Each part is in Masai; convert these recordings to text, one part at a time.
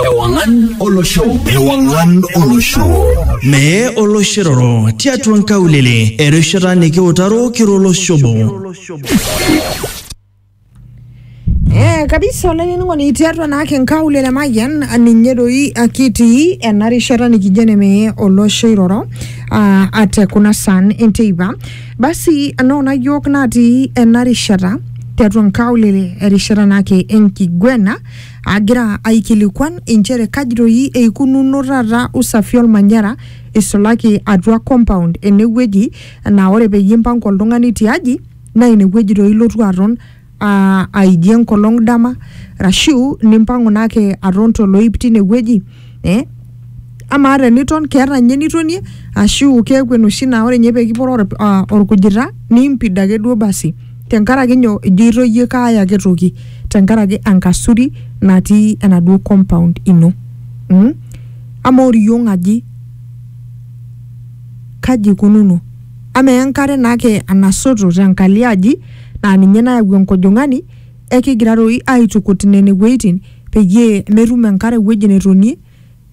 Ewangan Olosho. Ewangan Olosho. Mee oloshiroro tiatua nkaulele erishata nikiutaro kiro oloshobo. Eh, kabisa olainining'oni tiatua naake nkaulele mayian ninye doi akitii ena rishata nikijo nemeye olosho iroro ah, ate kuna san enteipa Basi anaa kuna yiok natii ena rishata tiatua nkaulele erishata naake enkiguena agira aikilikuan inchere kaji doi eikununo taata usafi olmanyara isulaki atua compound enewueji naa ore peyie impanga oltung'ani tiaji naa inewueji doi ilotu aton aa aijie enkolong dama arashu nimpang'u naa ake aton toloip tinewueji eh amaa teniton keeta ninye enitonie ashu keeku enoshi naa ore ninye pekiporo or, uh, orkujita niimpid ake duo basi tenkaraki nyoo ijoito iyie kaaya ake toki tenkaraki enkasuri natii enaduo compound ino mm? amaa oriong aji kaji ikununo amaa enkare naake enasoto tenkalo aji naa ninye nayau enkojong'ani ekigira toi aitukut nene wueitin peyie metum enkare ewueji netonie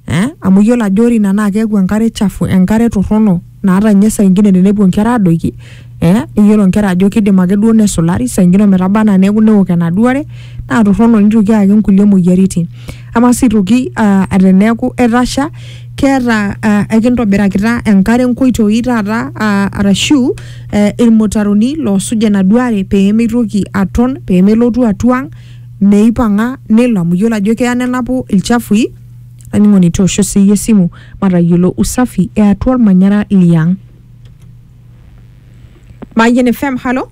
eh, amu iyiolo ajo ore ina naa keeku enkare chafu enkare torrono naata ninye saa ingine tenepuo inkera adoiki eh, iyiolo inkera ajo kidim ake duo nesulari saa ingine ometaba anaa neeku newok enaduo are naa torrono nitoki ayaki inkulie moyiaritin ama sii aitoki uh, teneeku etasha keeta uh, ekintobirakita enkare nkoitoi taata uh, arashu uh, ilmutaroni loosuj enaduo are pee meitoki aton pee melotu atua ang meipang'a nelo amu iyiolo ajo keya nenapu ilchafui laining'oni toosho siiyie esimu matayiolo usafi eatua olmanyara liang Mayian FM halo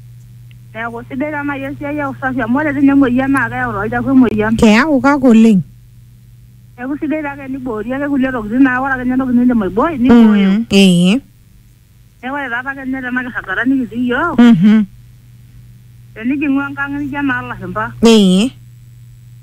Neeku sidai taa naaji esiai e usafi amu ore tine emoyian naa keyau tolchafu emoyian. Keyau kake oleng. Neeku sidai taa ake eniboori ake kulie tokitin naa ore ake ninye entoki niindim aibooi nibooyo. Mm, ee. Neeku ore taata ake ninye tena kirragata nikitii iyiook, Mhm. tenijing'u enkang nijo enaa lashumpa. Ee.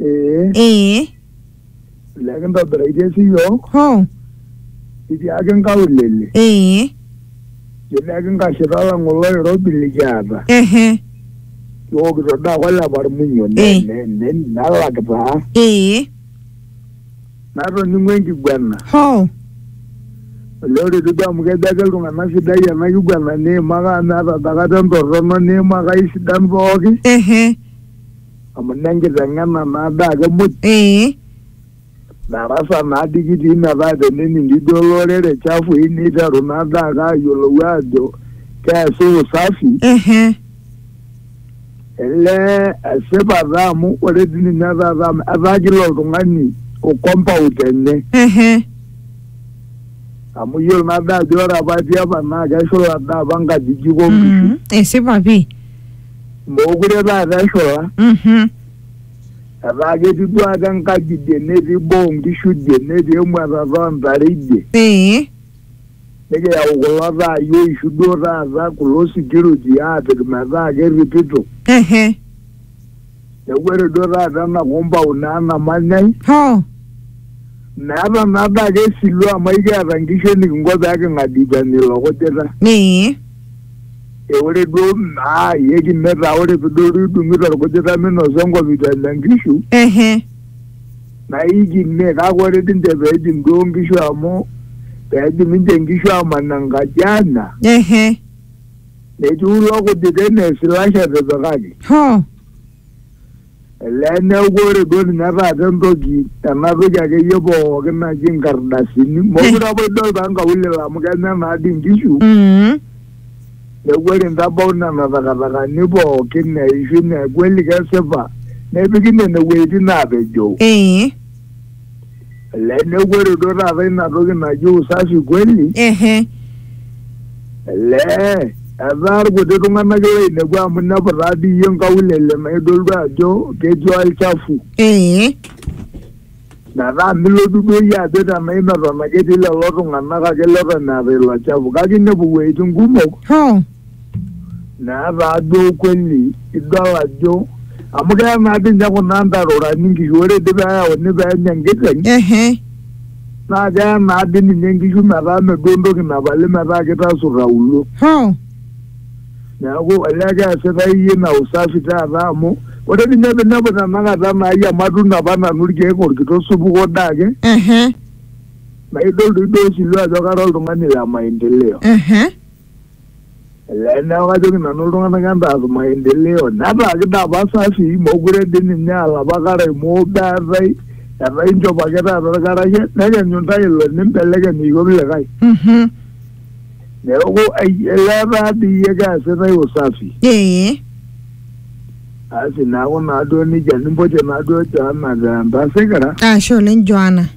Ee, ee lekintobiraitie siyiok ho itiaaki inkaulele, ee jileki nkashita alang oloirobi likiata. ehe Kiwokito daa kolepa ilmunyo, ne- Eh. ne- ne- nelak taa. ee Natoning'o enkiguena. ho Olee ore etiu duo amu kejo ake iltung'anak sidai ena kiguena niimaka amu meeta dakata entorrono niimaka aisidan pooki. ehe amu nenkiteng'ena naa daa ake muj ee darasa naa dii kitii metaa tenening ijo olorere chafui niteru naa daa ake ayiolou aajo keesi usafi ehe ele esipata amu ore dii ninye taata amu etaa kila oltung'ani o compound enye ehe amu iyiolo naa daa ajo ore apa tiapa naa keshula daa apa nkajijik onkishu Mhm. esipa pii Mookure taata eshola Mhm. etaa ketii duake enkaji idie netii boo onkishu idie netii emuatata oontare idie Ee. nikiyau kulo taai oishu duo taata kulo security aapik metaa kerripito Ehe. Neeku ore duo taata ena compound naa namanyai Hoo. meeta naa daa ake silu amu aikiata nkishu enikinko pee king'adikani ilo kujita. Ee. E ore duo naa iyie kime taa ore pidol duo idung'ito orkujita minosa enkop itu enya nkishu Ehe. naa ikime kake ore dii ninche pee ejing duo nkishu amu pee ejing ninche nkishu aaman enkaji aanya. Ehe. nechuulwa kuti kenesi lashape pakati hoo lene ukore duo ninye taata entoki enapik akeyie pooki naji inkardasini mokure apa idol taa nkaulele amu kenya naadi inkishu Mm. neeku ore intabau nena takatakani pooki neishu neeku eli kesipa nepiki nene wueitin naapejoo ee Ele neeku ore duo taata ina toki naji usafi kweli, ehe ele etaa irkuti tung'anak loinepu amu inepu taa dii iyie nkaulele naa idol duo ajo ketii olchafu. ee Metaa milotu duo iyie ajo tenaa imeton ake etii lelo tung'anak ake leton eeta ilo chafu kake inepu iwueitin kumok hoo neeta ajo ukweli idol ajo amu keya naa dii ninye kuna ntarorani nkishu ore dii peeyauni peenya enkiteng ehe naa keya naa dii ninye nkishu metaa meduo entoki napali metaa kitasur auluo ho neeku olee keesitai iyie ina usafi taata amu ore dii ninye pinepu tenakata naai amu atuuno apa nanu irkeek orkitok supuko dee ake ehe naa idol doi duo osiwuo ajo kara oltung'ani le maendeleo ehe Ee, neeku kajoki nanu iltung'anak entaas maendeleo netaa kidaapa safi mokure dii ninye aa lapa karae moobe eetae etaa inchop ake taata irkarash nekenyu intae ilo nimbelekeny iyiok likae Mhm. neeku ai- elee taa dii iyie keesitae usafi Ee. asi neeku naaduo nejia nimpotie naaduo Joana te Entasikira Ashe oleng Joana.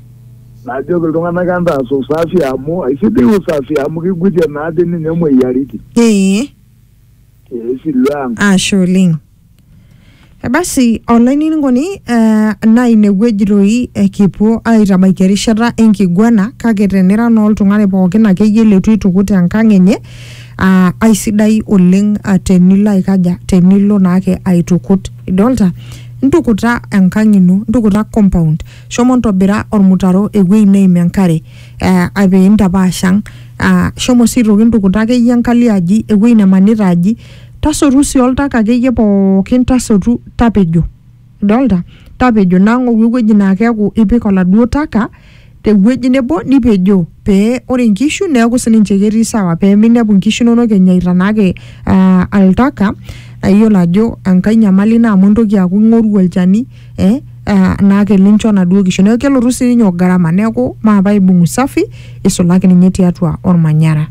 Najoki iltung'anak entaas usafi amu aisidai usafi amu kigutie naa dii ninye moyiaritin. ee Esilu ang. ashe oleng Eh, basi olainining'oni eh, naa inewueji toi eh, kipuo aitabaiki erishata enkiguana kake tenira naa oltung'ani pookin akeyie leitu eitukut enkang enye ah, aisidai oleng ah, tenilo aikaja tenilo naake aitukut idolta ntukuta enkang ino ntukuta compound shomo ntobira ormutaro ewueji neim enkare uh, pee intapaash ang uh, shomo sii aitoki ntukuta akeyie enkalo aji ewueji nemanita aji tasotu sii oltaka akeyie pookin tasotu tapejo idolta tapejo nang'oru ewueji naa keeku ipik oladuo taka tewueji nebo nipejoo pee ore inkishu neeku sininche ketii sawa pee minepu inkishu inonok enyaita naake uh, oltaka ayiolo ajo enkae nyamali ina amu intoki aaku ing'oru olchani eh, uh, naake lincho naduo kishu neeku kelotu sininye o gharama neeku maape aibung usafi isulaki ninye tiatua ormanyara.